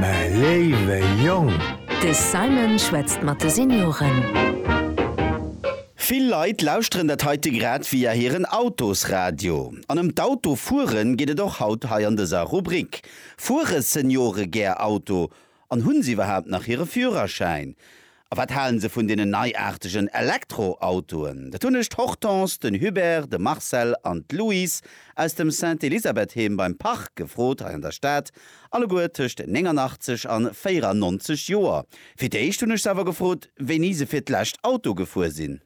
mä léiwe Jong! De Simon schwätzt mat de Senioren. Vill Leit lauschteren dat heite grad via hiren Autosradio. An ëm d'Autofueren geet et och haut hei an dëser Rubrik. Fuere Seniore gär Auto an hunn se iwwerhaapt nach hire Führerschäin? A wat halen se vun deenen neiaartegen Elektroautoen? Dat hunn ech d'Hortense, den Hubert, de Marcel an d'Louise aus dem Sainte-Elisabeth-Heem beim Parc gefrot, hei an der Stad, alleguer tëscht 89 an 94 Joer. Fir d'éischt hunn ech se awer gefrot, wéini se fir d'lescht Auto gefuer sinn.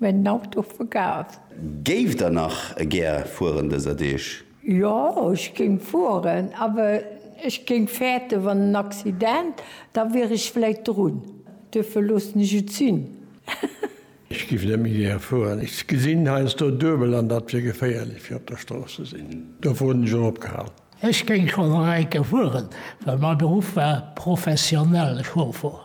Mä den Auto ass verkaf. Géift der nach gär fueren dëser Deeg? Jo, ech géing fueren, awer ech géing fäerten, wann en Accident, da wier ech vläit drun. Duerfir loossen ech et sinn. Ech géif net méi gär fueren. Ech gesinn heiansdo duebel an dat wier geféierlech fir op der Strooss ze sinn. Dofir hunn ech och opgehal. Ech géing schonn nach eng Kéier fueren, well mäi Beruff war professionell Chauffer.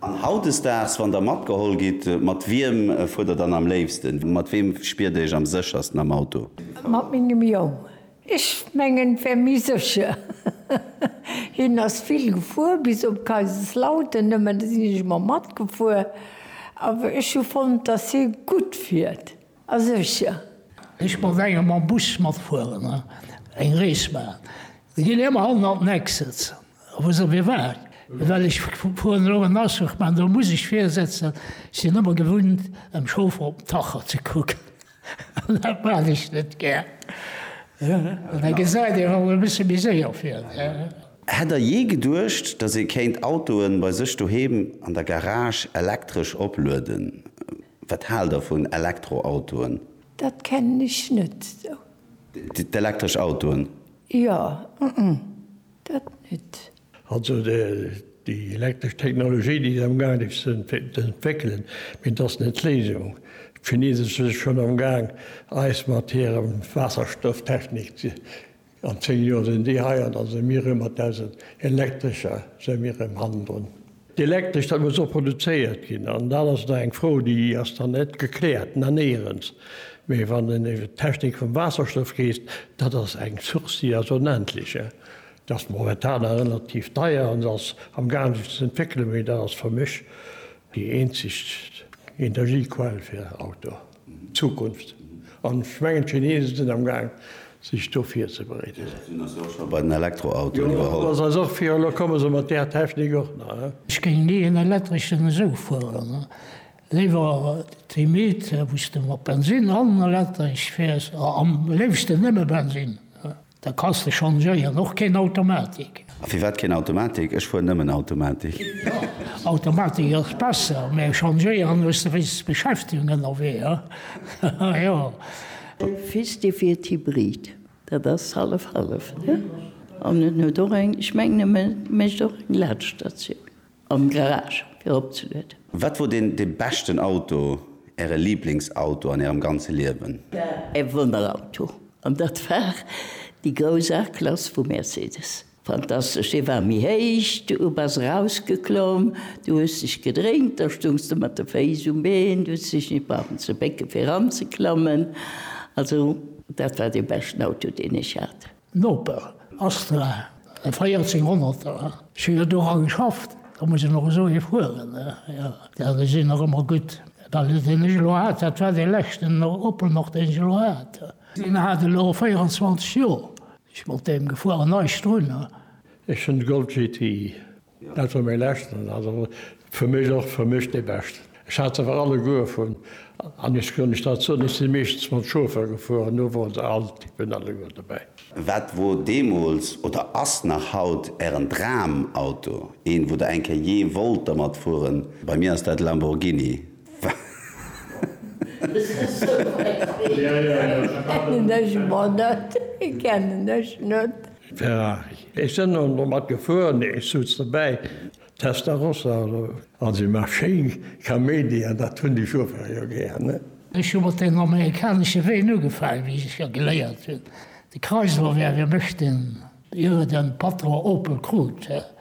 An hautdesdaags, wann der matgeholl gitt, mat wiem fuert der dann am léifsten? Mat weem spiert der iech am séchersten am Auto? Mat mengem Jong. Ech mengen, et wär méi sécher. Hien ass vill gefuer, bis op Kaiserslautern nëmmen, do sinn ech ëmmer matgefuer. Awer ech hu fonnt, dass hie gutt fiert a sécher. Ech mat engem mam Bus matfueren, eng Rees maachen, da gitt een ëmmer hannen an d'Neck sëtzen. Wou se mir waren. Well ech fueren elo en Azuch, mä do muss ech virsetzen. Ech sinn ëmmer gewunnt, dem Chauffer op den Tacho ze kucken. An dat maan ech net gär. An da gesäit een och e bësse méi séier vir. Hätt der jee geduecht, dass ee kéint Autoen bei sech doheem an der Garage elektresch oplueden? Wat haalt der vun Elektroautoen? Dat kennen ech net esou. D'elektresch Autoen? Jo. Dat net. Also déi elektresch Technologie, déi sinn amgaangen déi ze entwéckelen, mee dat ass net d'Léisung. D'Chinese si schonn amgaang eis mat hirem Waasserstofftechnik, an 10 Joer sinn déi hei an da si mir erëm mat eisen elektrescher si mir erëm hannendrun. D'Elektresch dat muss och produzéiert ginn an dat ass nach eng Fro déi ass nach net gekläert. Nanéierens, mee wann en iwwert d'Technik vum Waasserstoff reest, dat ass eng Source déi ass onendlech. Dat ass momentan nach relativ deier an se ass am gaangen sech ze entwéckelen, mee dat ass fir mech déi eenzeg Energiequell fir Autoe. Zukunft. An ech mengen, d'Chinesen sinn am Gaang, sech do virzebereeden. Déi sinn eis jo och scho bei den Elektroautoen iwwerholl. Jo, dat ass eis och virgehalen. Elo komme se mat där Technik och nach. Ech géing ni en elektreschen esou fueren. Léiwer d'Limite, wou s de mat Bensinn an elektresch fäers, am léifsten nëmme Bensinn. Da kanns de changéieren, och keen Automatik. A firwat keen Automatik? Ech fueren nëmmen Automatik. Automatik ass besser, mä changéieren hues de wéinstens Beschäftegung ënnerwee, ha jo. De Fils de wier d'Hybrid, dat ass hallef hallef, ne? An en huet och eng, ech mengen e mécht och eng Laadstatioun. Am Garage fir opzelueden. Wat wor den de beschten Auto, äre Lieblingsauto an ärem ganze Liewen? E Wonnerauto, an dat war déi grouss A-Klass vu Mercedes. Fantastesch, dee war méi héich, du bass erausgeklomm, du hues dech gedréint, da stoungs de mat de Féiss um Been, du hues dech nit brauchen ze bécke fir eranzeklammen. Also dat war dee beschten Auto, deen ech hat. Noper, Astra, e Véierzehnhonnerter. Ech hunn jo dora geschafft, da muss een och esou ee fueren. Jo, déi sinn nach ëmmer gutt. Well deen ech elo hat, dat war dee leschten Opel nach, deen ech elo hat. Deen hat elo 24 Joer. Ech mat deem gefuer an eischt drun. Ech hunn de Golf GTI. Dat war méi leschten, also fir mech och fir mech dee beschten. Ech hat se awer alleguer vun, an ech kann Iech dat soen, ech si meeschtens mam Chauffeur gefuer an do wor se all Typen alleguer dobäi. Wat wor deemools oder ass nach haut Ären Dramauto, een, wou Der eng Kéier jee wollt dermat fueren? Bei mir ass dat Lamborghini. Kennen ech mer net, kennen ech net. Ferrari, ech sen och no mat gefuer, nee ech suz dobäi, Testarossa oder also ëmmer schéin Kaméidi an dat hun déi Chauffer jo gär ne. Ech hu mat den amerikanesche Ween ugefaang, wéi ech jo geléiert hun, de Chrysler wär e Mëscht den ier e den Patron Opel krut.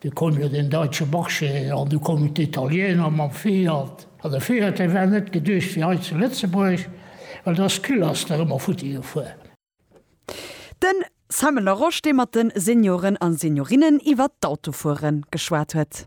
Du koum jo den Deutsche Marché an du koumen d'Italiener mam Fiat. An de Fiat, dee war net geduecht fir hei zu Lëtzebuerg, well do ass d'Küll ass der ëmmer futti gefuer. Den Simon Larosche, dee mat de Senioren a Seniorinnen iwwert d'Autofuere geschwat huet.